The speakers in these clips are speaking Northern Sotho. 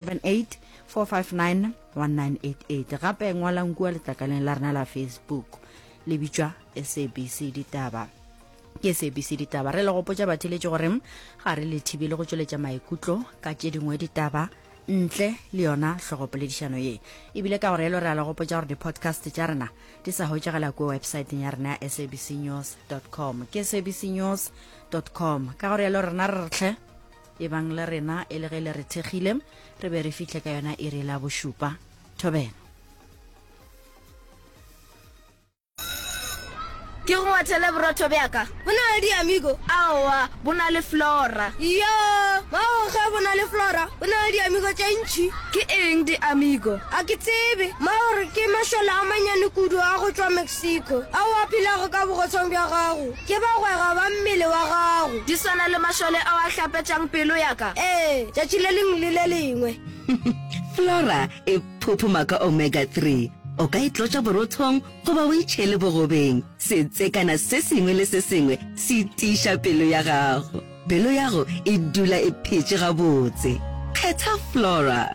78459198 gape ngwalang kua letlakaleng la rena la facebook le bitšwa sabc ditaba ke sabc ditaba re le gopotša batheletši gore ga re le thibele go tšweletša maikutlo ka tše dingwe ditaba ntle le yona hlogopoledišano ye ebile ka gore elo re a le gopotša gore di-podcast tša rena di sa hwetšagela kua websaeteng ya rena ya sabc news com ke sabc news com ka gore elo rena re re tlhe ebang le rena e le ge le re thekgile re be re fihle ka yona e re la bošupa thobela ke go ngwathele borotho bjaka bo na le diamigo aowa bo na le flora yo bao ge bo na le flora bo na le diamigo tše ntšhi ke eng diamigo a ke tsebe maore ke mašole a manyane kudu a go tšwa Siko, ao a phelago ka bogotshwang bja gago, ke bagwera ba mmele wa gago. Di swana le mašole ao a hlapetšang pelo ya ka, ee, tšatši le lengwe le le lengwe. Flora e phuphuma ka omega three. O ka e tlotša borothong goba o e tšhele bogobeng. Setsekana se sengwe le se sengwe se tiiša pelo ya gago. Pelo ya go e dula e phetše gabotse. Kgetha Flora.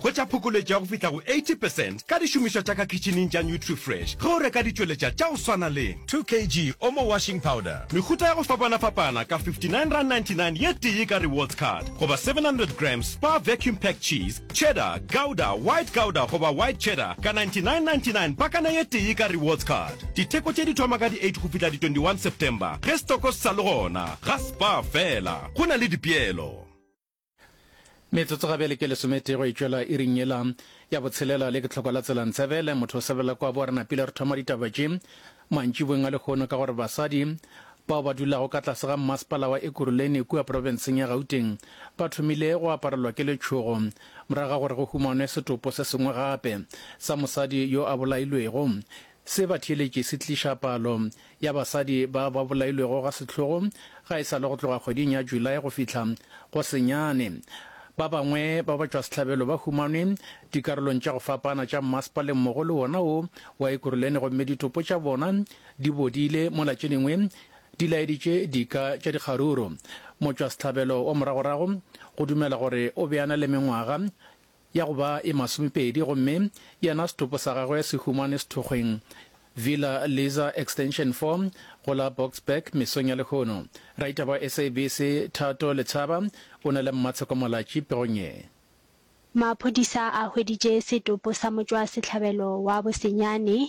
Hwetša phokoletšo ya go fihla go 80 percent ka dišomišwa tša ka khitšhining tša NutriFresh ge o reka ditšweletša tša go swana le. 2 kg Omo Washing Powder, mehuta ya go fapana-fapana ka R59.99 ye tee ka Rewards Card, goba 700 grams Spar Vacuum Packed Cheese, Cheddar, Gouda, White Gouda goba White Cheddar ka R99.99 pakana ye tee ka Rewards Card. Ditheko tše di thoma ka di 8 go fihla di 21 September ge setoko se sa le gona. Ga Spar feela, go na le dipeelo. Metsotso ga bjale ke lesometee go e tšwela iring yela ya botshelela le ke tlhoko la tsela ntsebele motho o sebela kwa bo re napile re thoma ditaba tše mantšibong a lekgono ka gore basadi bao ba dulago ka tlase ga mmasepala wa ekuruleni kua porofenseng ya gauteng ba thomile go aparelwa ke letšhogo morago ga gore go humanwe setopo se sengwe gape sa mosadi yo a bolailwego se ba theeletše se tliša palo ya basadi ba ba bolailwego ga sehlogo ga e sa le go tloga kgweding ya July go fihla go senyane. Ba bangwe ba batšwasehlabelo ba humanwe dikarolong tša go fapana tša mmasepaleng mmogo le wona wo wa Ekurhuleni gomme ditopo tša bona di bodile mola tše dingwe di laeditše dika tša dikgaruru. Motšwasehlabelo wa moragorago go dumela gore o be a na le mengwaga ya go ba e masomepedi gomme yena setopo sa gagwe se humane sethokgweng Villa Lisa Extension 4 go la Boksburg mesong ya lehono. Raita wa SABC Thato Letshaba o ne le Mmatsheko Molatši pegong ye. Maphodisa a hweditše setopo sa motšwasehlabelo wa Bosenyane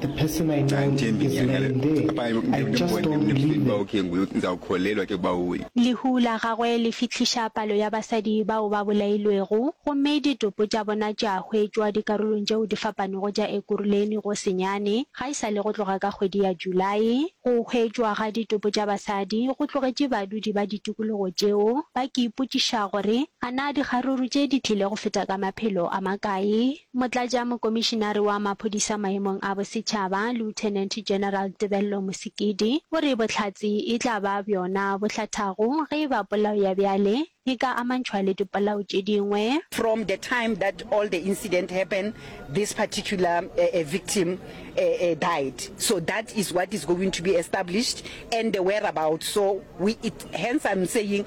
The person I know is lying there, I just don't believe them. Lehu la gagwe le fihliša palo ya basadi bao ba bolailwego, gomme ditopo tša bona tša hwetšwa dikarolong tšeo di fapanego tša Ekurhuleni go senyane, ga e sa le go tloga ka kgwedi ya Julae. Go hwetšwa ga ditopo tša basadi go tlogetše badudi ba ditikologo tšeo ba ke ipotšiša gore a na dikgaruru tše di tlile go feta ka maphelo a makae. Motlatšamokomišinare wa Maphodisa Maemong a Bosetšhaba, Lieutenant General Tebello Mosekedi, o re bohlatse e tla ba bjona bo hlathago ge e ba polao ya bjale e ka amantšhwa le dipolao tše dingwe. From the time that all the incident happen this particular victim died so that is what is going to be established and the whereabouts so we hence I'm saying